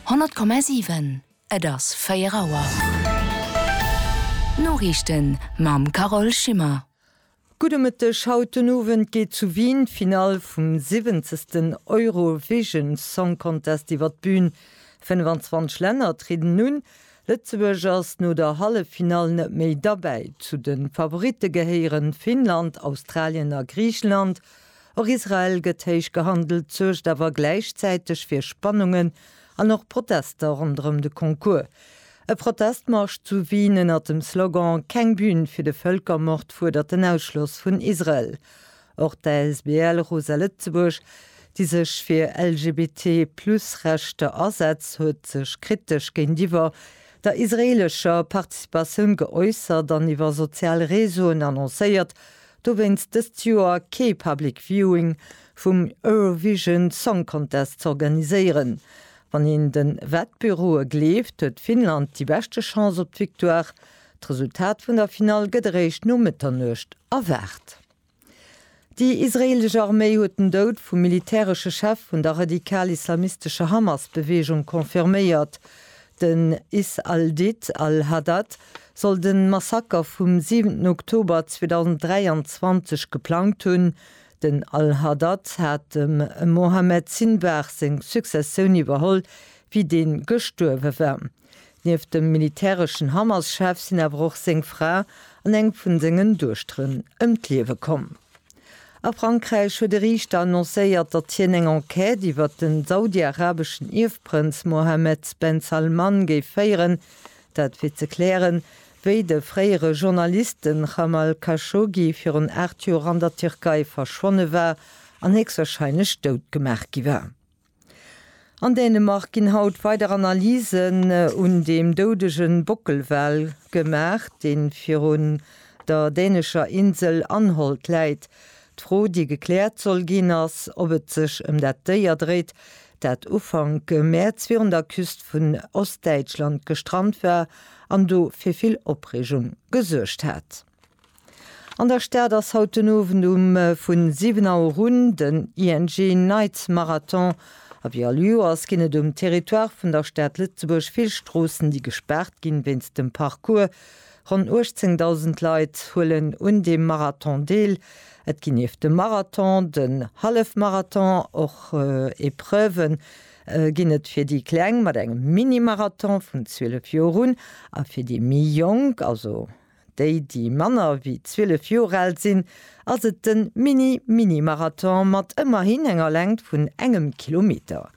100,7 Et ass 4 Auer. D'Noriichten mam Carole Schimmer. Gudde Mëtteg, Haut den Owend geet zu Wien d'Finall vum siwwenzegsten Eurovision Song Contest iwwer d'Bün. 25 Länner trieden un. Lëtzebuerg ass no der Halleffinall net méi derbäi. Zu de Favoritte gehéieren Finnland, Australien a Griichenland. Och Israel gëtt héich gehandelt, suergt awer gläichzäiteg fir Spannungen an och Protester ronderëm de Concours. E Protestmarsch zu Wien ënnert dem Slogan Keng Bühn fir de Vëlkermord fuerdert den Ausschloss vun Israel. Och d'ASBL Rosa Lëtzebuerg, déi sech fir LGBT-Plus-Rechter asetzt, huet sech kritesch géintiwwer der israeelescher Participatioun geäussert an iwwer sozial Reseauen annoncéiert, dowéinst dëst Joer kee Public Viewing vum Eurovision Song Contest z'organiséieren. Wann een de Wettbüroe gleeft, huet Finnland déi beschte Chance op d'Victoire. D'Resultat vun der Finall gëtt eréischt no Mëtternuecht erwaart. Déi israeelesch Arméi huet den Doud vum militäresche Chef vun der radikal-islamistescher Hamas-Beweegung confirméiert. Den Is al-Did al-Haddad soll de Massaker vum siwenten Oktober 2023 geplangt hunn. Den al-Haddad hat dem Mohammed Sinwar seng Successioun iwwerholl, wéi dee gestuerwe war. Nieft dem militäreschen Hamas-Chef sinn awer och seng Fra an eng vun sengen Duechteren ëm d'Liewe komm. A Frankräich huet e Riichter annoncéiert, datt hien eng Enquête iwwert de saudi-arabeschen Ierfprënz Mohammed ben Salman géif féieren, Dat fir ze klären, wéi de fréiere Journalist, de Jamal Khashoggi, virun 8 Joer an der Tierkei verschwonne war an héchstwarscheinlech dout gemaach gi war. An Dänemark ginn haut weider Analysen un deem doudege Bockelwal gemaach, dee virun der dänescher Insel Anholt läit. D'Fro, déi gekläert soll ginn, ass, ob et sech ëm dat Déier dréit, dat Ufank Mäerz virun der Küst vun Ostdäitschland gestrant war an do fir vill Opreegung gesuergt hat. An der Stad ass haut den Owend um vu 7 Auer un den ING Night Marathon a wéi all Joers ginn et um Territoire vun der Stad Lëtzebuerg vill Stroossen, déi gespaart ginn wéinst dem Parcours. Ronn 18.000 Leit huelen un deem Marathon deel. Et ginn nieft dem Marathon, den Hallefmarathon och Epreuven. Ginn et fir déi Kleng mat engem Mini-Marathon vun 12 Joer un a fir déi méi Jonk, also déi, déi manner wéi 12 Joer al sinn, ass et de Mini-Mini-Marathon mat ëmmerhin enger Längt vun engem Kilometer.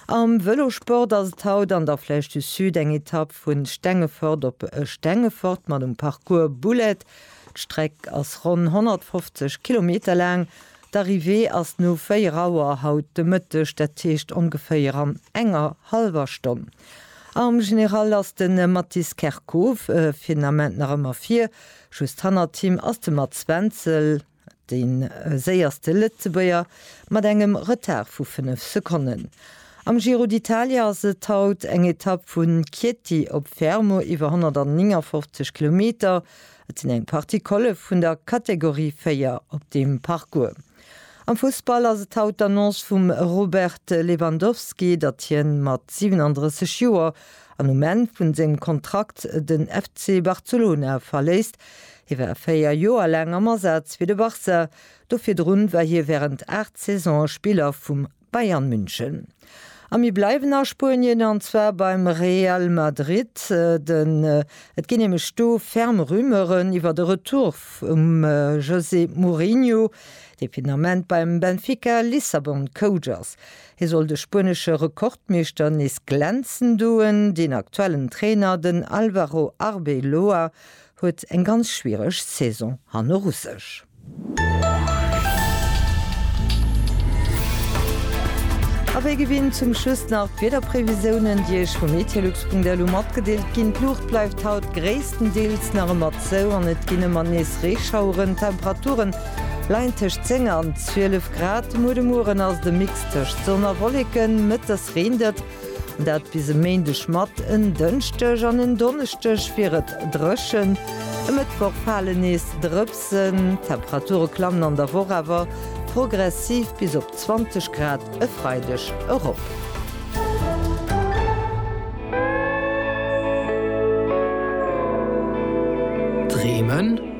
Am Vëlosport ass et haut an der Flèche du Sud eng Etapp vu Stengefort op Stengefort mat um Parcours Bullet. D'Streck ass ronn 150 Kilometer laang. D'Arrivée ass no 4 Auer haut de Mëtteg, dat heescht ongeféier an enger hallwer Stonn. Am General ass de Mathis Kerkhoff fir den Ament nach ëmmer vir, just hannert him ass de Mats Wenzel. Dee séierste Lëtzebuerger mat engem Retard vu 5 Sekonnen. Am Giro d'Italia ass et haut eng Etapp vu Chieti op Fermo iwwer 159 Kilometer. Et sinn eng Partie Colle vun der Kategorie 4 op deem Parcours. Am Fussball ass et haut d'Annonce vum Robert Lewandowski, datt hien mat 37 Joer an um Enn vun sengem Kontrakt den FC Barcelona verléisst. Hie war 4 Joer laang am Asaz fir de Barça, do virdrun war hie wärend 8 Saisone Spiller vum Bayern München. A mir bleiwen a Spuenien an zwar beim Real Madrid, den et ginn nämlech do ferm Rumeuren iwwert e Retour vum José Mourinho, dee fir den Ament beim Benfica Lissabon Coach ass. Hie soll de spuenesche Rekordmeeschter nees glänzen doen. Den aktuellen Trainer, den Alvaro Arbeloa, huet eng ganz schwiereg Saison hanner u sech. A wéi gewinnt zum Schluss nach d'Wiederprevisiounen, déi Iech vu meteolux.lu matgedeelt ginn. D'Luucht bleift haut gréisstendeels nach ëmmer zou an et ginn ëmmer nees Reeschaueren. D'Temperaturen Leien tëscht 10 an 12 Grad. Muer de Mueren ass et e Mix tëscht Sonn a Wolleken, mëttes reent et. Dat bis e Méindeg mat en Dënschdeg an en Donneschdeg wier et dréchen. E Mëttwoch fale nees Drëpsen, d'Temperature klammen an der Woch awer progressiv bis op 20 Grad e Freideg erop. Dreemen?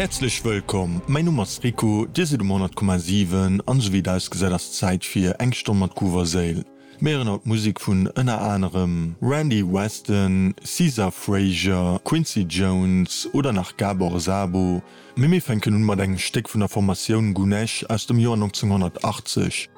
Häerzlech wëllkomm, mäi Numm ass Rico, Dir sidd um 100,7 an esou wéi et ausgesäit ass Zäit fir eng Stonn mat Groove a Séil. Mir héieren haut Musek vun ënner anerem Randy Weston, Caesar Frazier, Quincy Jones oder nach Gabor Szabo, mee mir fänken un mat engem Stéck vun der Formatioun Gunesh aus dem Joer 1980.